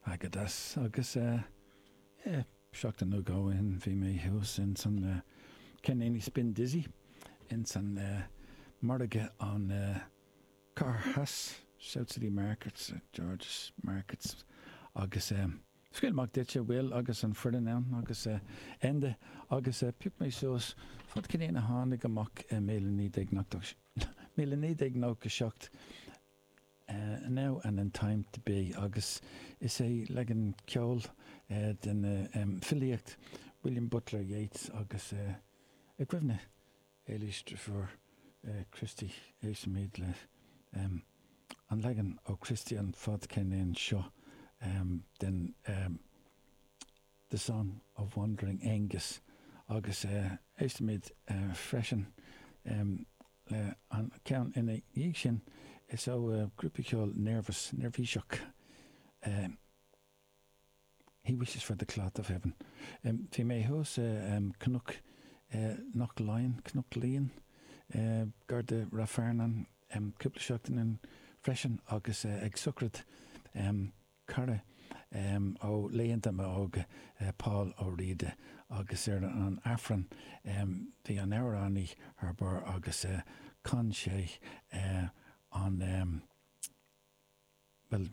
Airgeadas Agus eh, eh, seachtain nó dhó ó shin bhí mé thuas ins an eh, Ceirníní Spin Dizzy ins an eh, margadh an eh, Cathair Theas, South City Market, St George's Market agus eh, scaoil amach duit a' Will agus an foireann ann agus eh, Enda agus eh, phioc mé suas fadcheirnín a tháinig amach i míle naoi déag nócha, míle naoi déag nócha seacht. Now and in time to be agus is é leagan ceoil den filíocht William Butler Yeats agus i gcuimhne Éilís de Paor, Christy, éistfimid le an leagan ó Christy an fadcheirnín seo den The Song of Wandering Aengus agus éistfimid freisin le an ceann ina dhiaidh sin, is ó grúpa ceoil Nervous, neirbhíseach, He Wishes for the Cloth of Heaven. Bhí mé thuas i Cnoc Knocklyon, Cnoc Lín, gar do Ráth Fearnáin cúpla seachtain freisin agus ag sochraid cara ó laethanta m'óige, Paul Ó Riada, agus ar an Aifreann bhí an amhránaí thar barr agus chan sé an, bhuel,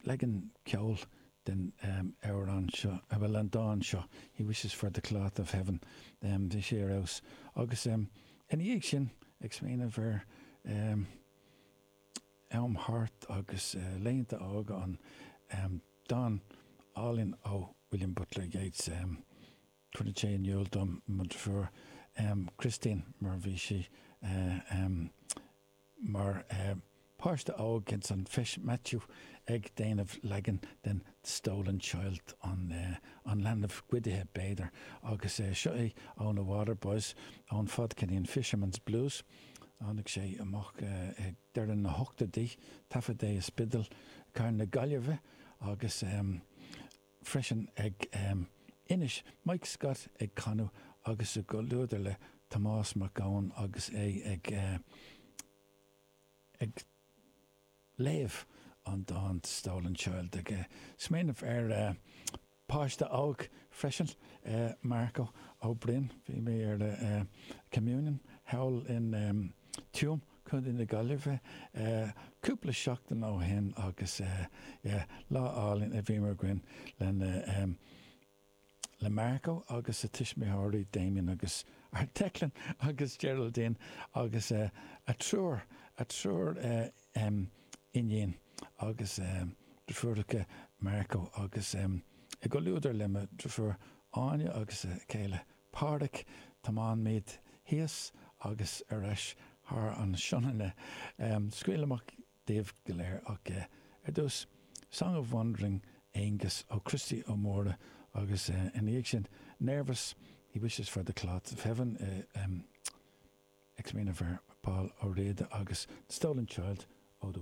leagan ceoil den amhrán seo, bhuel, an dán seo, He wishes for the cloth of heaven, bhí sé ar fheabhas. Agus ina dhiaidh sin, ag smaoineamh ar. am thart agus laethanta óga an dán álainn ó William Butler Yeats cuireann sé in iúl dom mo dheirfiúr Christine mar bhí sí mar páiste óg ins an Feis Maitiú ag déanamh leagan den The Stolen Child An Leanbh Goidithe b'fhéidir agus seo í ó na Waterboys ón fadcheirnín Fisherman's Blues. Tháinig sé amach ag deireadh na hochtóidí, taifead é i Spidéal Cathair na Gaillimhe agus freisin ag Inis, Mike Scott ag canadh agus i gcomhluadar le Tomás Mac Eoin agus é ag Léamh, An dán 'Stolen Child' ag smaoineamh ar pháiste óg freisin, Marco Ó Broin. Bhí mé ar Communion thall in Tuam, Co. na Gaillimhe, cúpla seachtain ó shin agus lá álainn a bhíomar againn lena le Marco agus a tuismitheoirí Damien agus Declan agus Geraldine agus a triúr a triúr iníon agus deirfiúracha Marco agus i gcomhluadar le mo dhrifiúr Áine agus a céile Páraic tiomáinimid thíos agus ar ais thar an Sionainne. Scaoil amach. dóibh go léir ach é. Ar dtús, Song of Wandering Aengus ó Christy Ó Mórdha, agus ina dhiaidh sin, Nervous, He Wishes for the Cloths of Heaven, X-Mine of Air, Paul Ó Riada, agus The Stolen Child ó The.